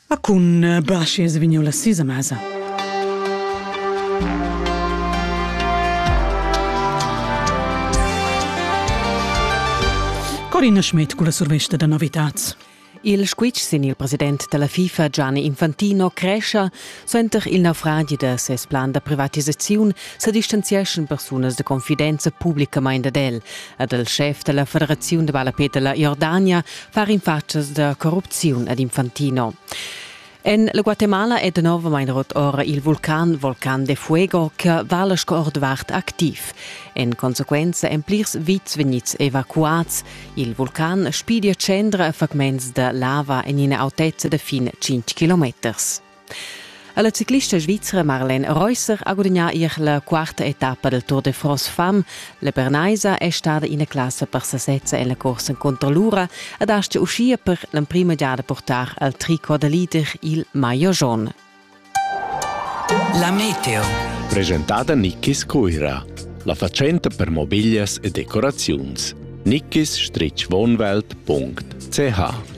Ma cun eh, Braschi es vegniu la sisa mesa. Corina Schmidt con la survesta da novitats. Il squitsch sin il president della FIFA Gianni Infantino crescia senter il naufragi da ses plan da privatisaziun sa distanzieschan persunas de confidenza publicamain ad el, ad el chef della Federazione de Balla Peter la Jordania far infatschas da corrupziun ad Infantino. En la Guatemala è novamain rot ora il vulcan Volcan de Fuego che vala sco ordvart activ. En consequenza èn plirs vits vegnids evacuads. Il vulcan spidia tschendra fragments da lava en ina autezza da fin 5 kilometers. La ciclista svizra Marlene Reusser ha gudagnà ier la quarta etappa del Tour de France Femme. La Bernaisa è stada ina classa per sasezza en la corsa contro l'ura ed astga uschia per l'emprima giada portar al tricot da leader il maillot jaune. La meteo. Presentata Nikkis Cuira, la fatschenta per mobiglias e decoraziuns. nikkisstreetschwohnwelt.ch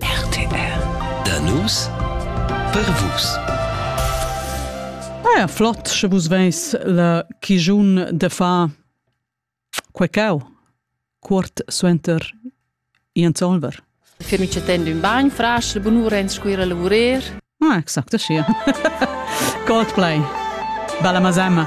RTR Da nus per vus. Eir flott sche vus veis la chigiun de fa quei cau cuort suenter Ian Solver. Fermi cetend un bagn frasch, bunura ins scuira lavurer. Ah, exact, schia. Coldplay. Bella Mazemma.